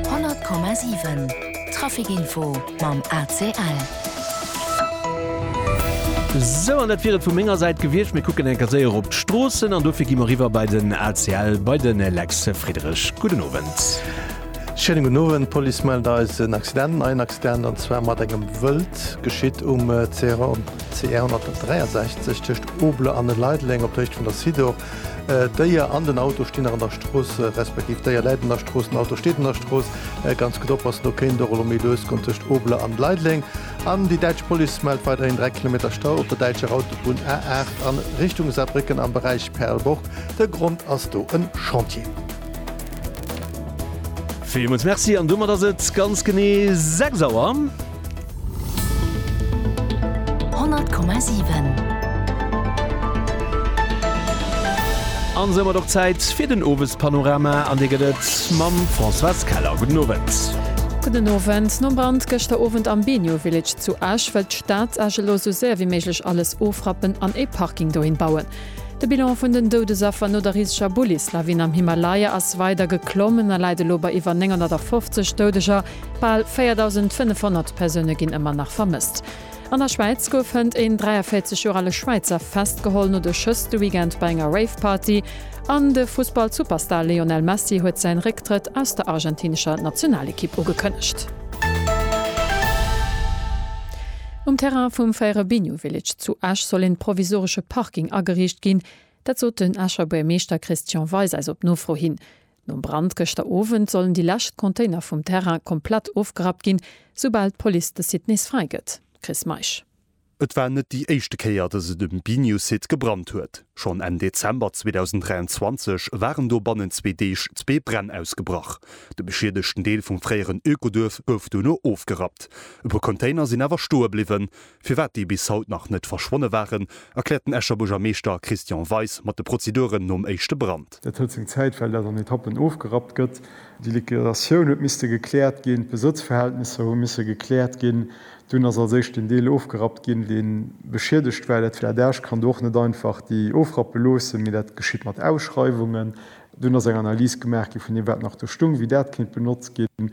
100,7 Trafic info mam ACL. Sou, an dat wier et vu menger Säit gewiescht. Mir kucken eng Kéier séier op d'Stroossen an dofir gi mer eriwwer bei den ACL, bei de Lex Friederich. Gudden Owend. Schéinen gudden Owend. D'Police mellt eis en Accident, en neien Accident, an zwar mat engem Wëld. Geschitt um CR 163 tëscht Obler an Leideleng op der Héicht vun der Sidor. D'Déier an den Auto stinn nach an der Strooss, respektiv d'Déier läit an der Strooss, den Auto steet an der Strooss. Ganz gutt oppassen, do kéint och elo méi lues goen tëscht Obler an Leideleng. An déi däitsch Police mellt weiderhin 3 Kilometer Stau op der däitscher Autobunn A8 a Richtung Saarbrécken am Beräich Perlborg. De Grond ass do e Chantier. Villmools Merci an domat ass et ganz genee 6 Auer. 100,7. An somat och Zäit fir den Owespanorama an dee gëtt et mam Françoise Keller. Gudden Owend. Gudden Owend. Nom Brand gëschter Owend am Benio Village zu Esch wëllt d'Stad Esch elo sou séier wéi méiglech alles ofrappen an ee Parking dohin bauen. De Bilan vun den Doudesaffer no der riseger Bullislawin am Himalaya ass weider geklommen a läit elo bei iwwer 950 Doudeger. Bal 4.500 Persoune ginn ëmmer nach vermësst. An der Schwäiz gouf hënt een 43 Joer ale Schwäizer festgeholl, no de Schëss de Weekend bei enger Rave-Party. An de Fussball-Superstar Lionel Messi huet säin Récktrëtt aus der argentinescher Nationalekipp ugekënnegt. Um Terrain vum Fairebinho Village zu Esch soll een provisoresche Parking ageriicht ginn. Dat sot den Escher Buermeeschter Christian Weis eis op Nofro hin. Nom Brand gëschter Owend sollen déi lescht Container vum Terrain komplett ofgerappt ginn, soubal d'Police de Site nees fräi gëtt. Chris Meisch. Et war net déi éischte Kéier, dass et um Biniou-Site gebrannt huet. Schonn Enn Dezember 2023 waren do bannent zwee Deeg zwee Bränn ausgebrach. De beschiedegten Deel vum fréieren Ökoduerf gouf dono ofgerappt. E puer Container sinn awer stoe bliwwen. Firwat déi bis haut nach net verschwonne waren, erkläert den Escher Buergermeeschter Christian Weis mat de Prozeduren nom éischte Brand. Dat huet seng Zäit, well dat an Etappen ofgerappt gëtt. Déi Liquidatioun huet misste gekläert ginn, d'Besëtzverhältnisser hu misse gekläert ginn. Dunn ass als éischt deen Deel ofgerappt ginn, dee beschiedegt war. Dat Adage kann do och net einfach déi ofrappe loossen, mee dat geschitt mat Ausschreiwungen. Dunn ass eng Analys gemaach gi vun deem, wat nach do stung, wéi dat kéint benotzt ginn.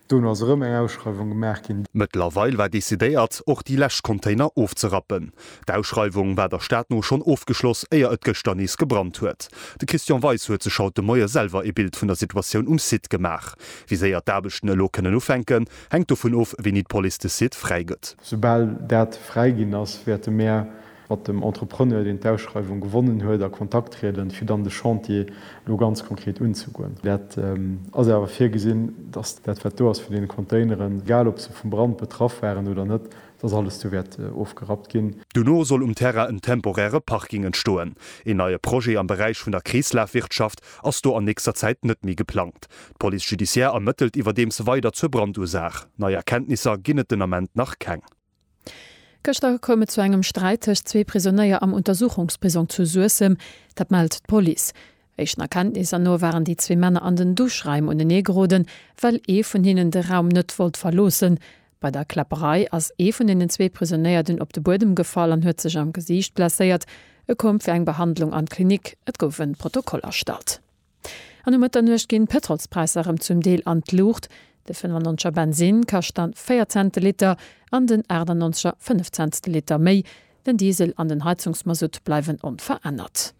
Dono ass erëm eng Ausschreiwung gemaach ginn. Mëttlerweil war decidéiert, och déi lescht Container ofzerappen. D'Ausschreiwung war der Stad no schonn ofgeschloss, éier et gëschter nees gebrannt huet. De Christian Weis huet sech haut de Moie selwer ee Bild vun der Situatioun um Site gemaach. Wéi séier d'Aarbechten elo kënnen ufänken, hänkt dovun of, wéini d'Police de Site fräigëtt. Soubal dat fräiginn ass, wäerte mär mat dem Entrepreneur, deen d'Ausschreiwung gewonnen huet, a Kontakt trieden, fir dann de Chantier elo ganz konkret unzegoen. Dat ass awer virgesinn, dass dat, wat do ass vun deene Containeren, egal ob se vum Brand betraff waren oder net, dass alles do wäert ofgerappt ginn. Dono soll um Terrain en temporäre Parking entstoen. Een neie Projet am Beräich vun der Kreeslafwirtschaft ass do an nächster Zäit net méi geplangt. D'Police judiciaire ermëttelt iwwerdeems weider zur Brandursaach. Nei Erkenntnisser ginn et den Ament nach keng. Gëschter koum et zu engem Sträit tëscht zwee Prisonéier am Untersuchungsprisong zu Suessem. Dat mellt d'Police. Éischten Erkenntnisser no waren déi zwee Männer an den Duschraim unenee geroden, well ee vun hinnen de Raum net wollt verloossen. Bei der Kläpperei ass ee vun den zwee Prisonéierten op de Buedem gefall an huet sech am Gesiicht blesséiert. E koum fir eng Behandlung an d'Klinik. Et gouf e Protokoll erstallt. An um Mëtternuecht ginn d'Pëtrolspräisser erëm zum Deel an d'Luucht, de 95 er Bensinn kascht dann 4 Cent de Liter an den 98 er 5 Cent de Liter méi. Den Diesel an den Heizungsmasutt bleiwen onverännert.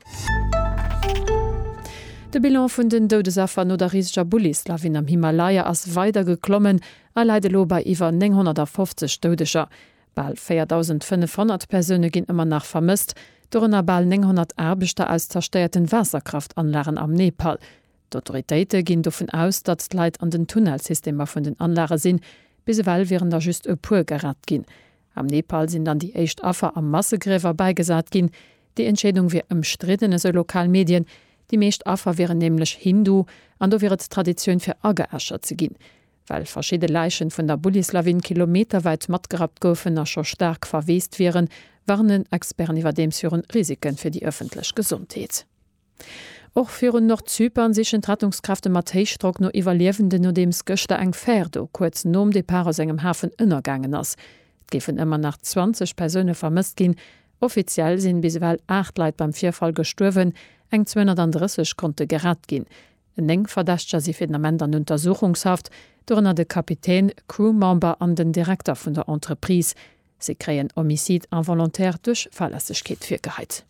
De Bilan vun den Doudesaffer no der riseger Bullis-Lawin am Himalaya ass weider geklommen a läit elo bei iwwer 950 Doudeger. Bal 4.500 Persoune ginn ëmmer nach vermësst, dorënner bal 900 Aarbechter aus zerstéierten Waasserkraftanlagen am Nepal. D'Autoritéite ginn dovun aus, datt d'Leit an den Tunnelsystemer vun den Anlage sinn. Bis ewell wieren der just e puer gerett ginn. Am Nepal sinn dann déi éischt Affer a Massegriewer bäigesat ginn. Déi Entscheedung wier ëmstridden, esou lokal Medien. Déi meescht Affer wieren nämlech Hindu an do wier et Traditioun fir ageäschert ze ginn. Well verschidde Läichen vun der Bullislawin kilometerwäit matgerappt goufen a scho staark verweest wieren, warnen Experten iwwerdeems viru Risike fir déi ëffentlech Gesondheet. Och virun Nordzypern sichen d'Rettungskräfte mat Héichdrock no Iwwerliewenden, nodeems gëschter eng Fär do kuerz nom Depart aus engem Hafen ënnergaangen ass. Et géifen ëmmer nach 20 Persoune vermësst ginn. Offiziell sinn bis ewell 8 Leit beim Virfall gestuerwen, eng 230 konnte gerett ginn. Néng Verdächteger si fir den Ament an Untersuchungshaft, dorënner de Kapitän, Crew-Member an den Direkter vun der Entreprise. Si kréien Homicide involontaire duerch Fahrlässegkeet virgeheit.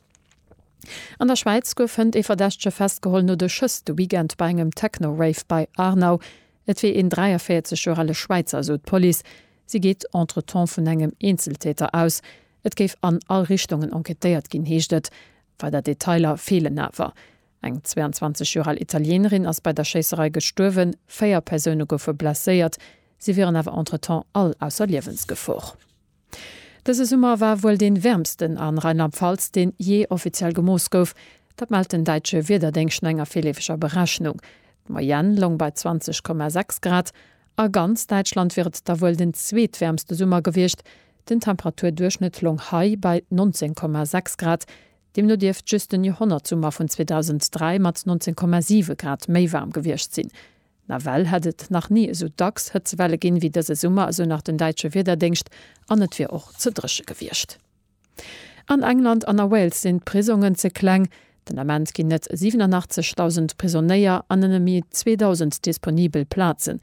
An der Schwäiz gouf hënt ee Verdächtege festgeholl no de Schëss de Weekend bei engem Techno-Rave bei Aarnau. Et wier een 43 Joer ale Schwäizer, esou d'Police. Si geet entretemps vun engem Eenzeltäter aus. Et géif an all Richtungen enquêtéiert ginn, heescht et. Weider Detailer feelen awer. Eng 22 Joer al Italienerin ass bei der Schéisserei gestuerwen, véier Persoune goufe blesséiert, si wieren awer entretemps all ausser Liewensgefor. Dëse Summer war wuel dee wäermsten a Rheinland-Pfalz, deen jee offiziell gemooss gouf. Dat mellt den däitsche Wiederdéngscht no enger virleefeger Berechnung. D'Moyenne loung bei 20,6 Grad. A ganz Däitschland wier et da wuel den zweetwäermste Summer gewiescht. Den Temperaturduerchschnëtt loung hei bei 19,6 Grad, Deemno dierft just den Joerhonnertsummer vun 2003 mat 19,7 Grad méi waarm gewiescht sinn. Nawell hätt et nach ni esou dacks Hëtzewelle ginn, wéi dëse Summer, esou nach den däitsche Wiederdéngscht, an et wier och ze dréche gewiescht. An England an a Wales sinn d'Prisongen ze kleng. Den Ament ginn net 87.000 Prisonnéier an nëmme méi 2.000 disponibel Plazen.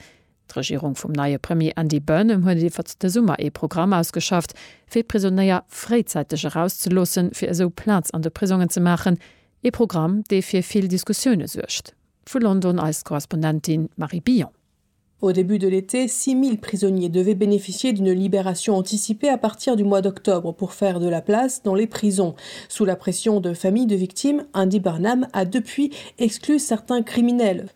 D'Regierung vum neie Premier Andy Burnham huet iwwert de Summer ee Programm ausgeschafft, fir Prisonéier fréizäiteg erauszeloossen, fir esou Plaz an de Prisongen ze maachen. Ee Programm, dee fir vill Diskussioune suergt. Vu London eis Korrespondentin Marie Billon. Au début de l'été, 6.000 prisonniers devaient bénéficier d'une libération anticipée à partir du mois d'octobre pour faire de la place dans les prisons. Sous la pression de familles de victimes, Andy Burnham a depuis exclu certains criminels,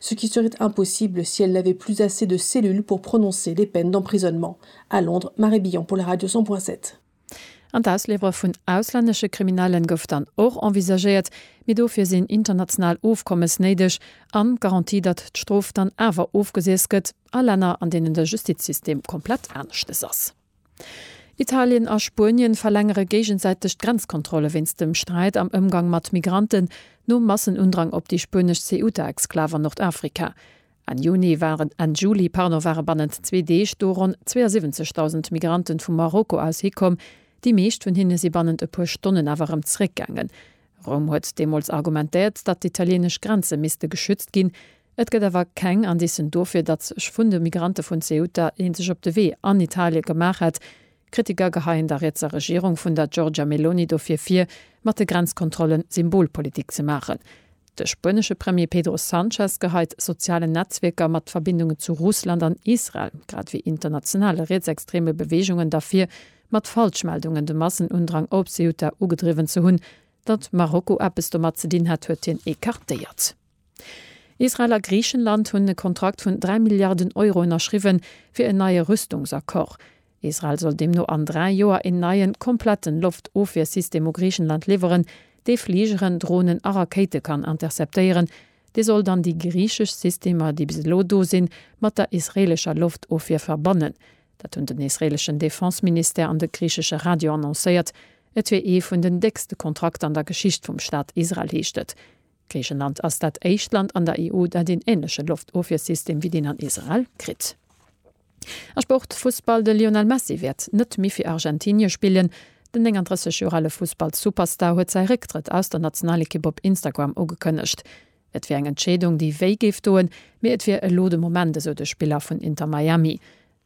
ce qui serait impossible si elle n'avait plus assez de cellules pour prononcer des peines d'emprisonnement à Londres, Marie Billon pour la Radio 100.7. An d'Ausliwwere vun auslännesche Kriminellen gouf dann och envisagéiert, mee dofir sinn international Ofkommes néideg an d'Garantie, datt d'Strof dann awer ofgesiess gëtt a Länner, an deenen de Justizsystem komplett aneschtes ass. Italien a Spuenien verlängere géigesäiteg d'Grenzkontrolle wéinst dem Sträit am Ëmgang mat Migranten nom Massenundrang op déi spuenesch Ceuta-Exklav an Nordafrika. Enn Juni waren Enn Juli, pardon, ware bannent zwee Deeg do ronn 72.000 Migranten vu Marokko aus hikomm. Déi meescht vun hinne si bannent e puer Stonnen awer erëm zeréckgaangen. Roum huet deemools argumentéiert, datt d'italieenesch Grenze misste geschützt ginn. Et gëtt awer keng Indicen dofir, datt sech vun de Migrante vun Ceuta ee sech op de Wee an Italie gemaach hätt. Kritiker geheien der rietser Regierung vun der Giorgia Meloni dofir vir, mat de Grenzkontrolle Symbolpolitik ze maachen. De spuenesche Premier Pedro Sanchez geheit sozialen Netzwierker mat Verbindungen zu Russland an Israel, grad ewéi internationale rietsextreme Beweegungen dervir, mat Falschmeldungen de Massenundrang op Ceuta ugedriwwen ze hunn. Datt Marokko eppes domat ze dinn hat, huet hien ecartéiert. Israel a Griichenland hunn e Kontrakt vun 3 Milliarden Euro ënnerschriwwen, fir en neie Rüstungsaccord. Israel soll deemno an dräi Joer een neien, kompletten Loftofwiersystem u Griichenland liwweren, dee Fligeren, Dronen a Rakéite kann interceptéieren. Dee soll dann déi griichesch Systemer, déi bis elo do sinn, mat der israeelescher Loftofwier verbannen. Dat hunn den israeleschen Defense-Ministère an de griichesche Radio annoncéiert. Et wier ee vun den déckste Kontrakter an der Geschicht vum Staat Israel, heescht et. Griichenland ass dat éischt Land an der EU, dat een änleche Loftofwiersystem wéi deen an Israel kritt. A Sport, Fussball, De Lionel Messi wäert net méi fir Argentinie spillen. Den 39 Joer ale Fussballsuperstar huet säi Récktrëtt aus der Nationalekipp op Instagram ugekënnegt. Et wier eng Entscheedung, déi wéi géif doen, mee et wier elo de Moment, esou de Spiller vun Inter Miami.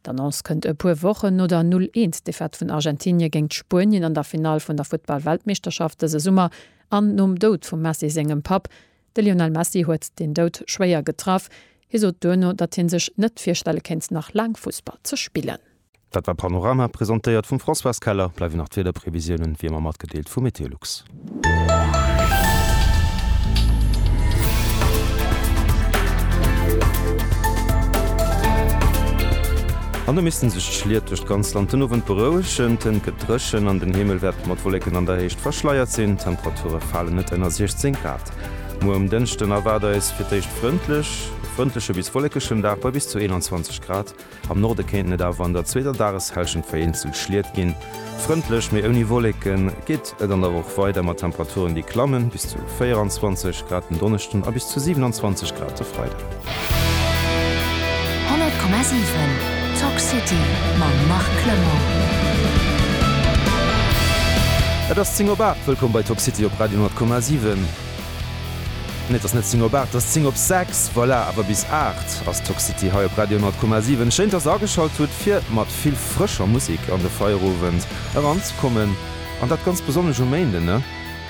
D'Annonce kënnt e puer Wochen no der 0 Eens Defaite vun Argentinie géingt Spuenien an der Finall vun der Futtball-Weltmeeschterschaft dëse Summer an nom Doud vum Messi sengem Papp. De Lionel Messi huet deen Doud schwéier getraff. Hie sot duerno, datt hie sech net virstelle kéint, nach laang Fussball ze spillen. Dat war Panorama, presentéiert vum Françoise Keller. Bleiwen nach d'Wiederprevisiounen, wéi ëmmer, matgedeelt vu MeteoLux. An da missten sech d'Schliet duerch d'ganzt Land den Owend berouegen. D'Hënt gëtt dréchen an den Himmel wäert mat Wolleken an der Héicht verschleiert sinn. D'Temperature falen net ënner 16 Grad. Muer um Dënschden erwaart eis fir d'éischt frëndlech, e frëndleche bis wollekeschen Dag bei bis zu 21 Grad. Am Norde kéinten et awer an der zweeter Dageshellschent vereenzelt Schliet ginn. Frëndlech, mee ouni Wolleke geet et an der Woch weider mat Temperaturen, déi klammen, bis zu 24 Grad den Donneschden a bis zu 27 Grad de Freiden. 100,7 Talk City mam Marc Clement. Et ass 10 op 8, wëllkomm bei Talk City op Radio 100,7. Nee et ass net 10 op 8, et ass 10 op 6, voilà, awer bis 8 ass Toxity hei op Radio 10,7. Schéin dass der ageschalt hutt fir mat vill frëscher Musek an de Feierowend eran ze kommen an dat ganz besonnesch um Méinden ne.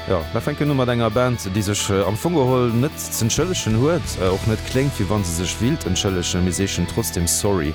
Jo mer fänken u mat enger Band déi sech am Fong geholl net z'entschëllegen huet, och net kléngt wéi wann se sech willt entschëllegen, mee si heeschen trotzdem Sorry.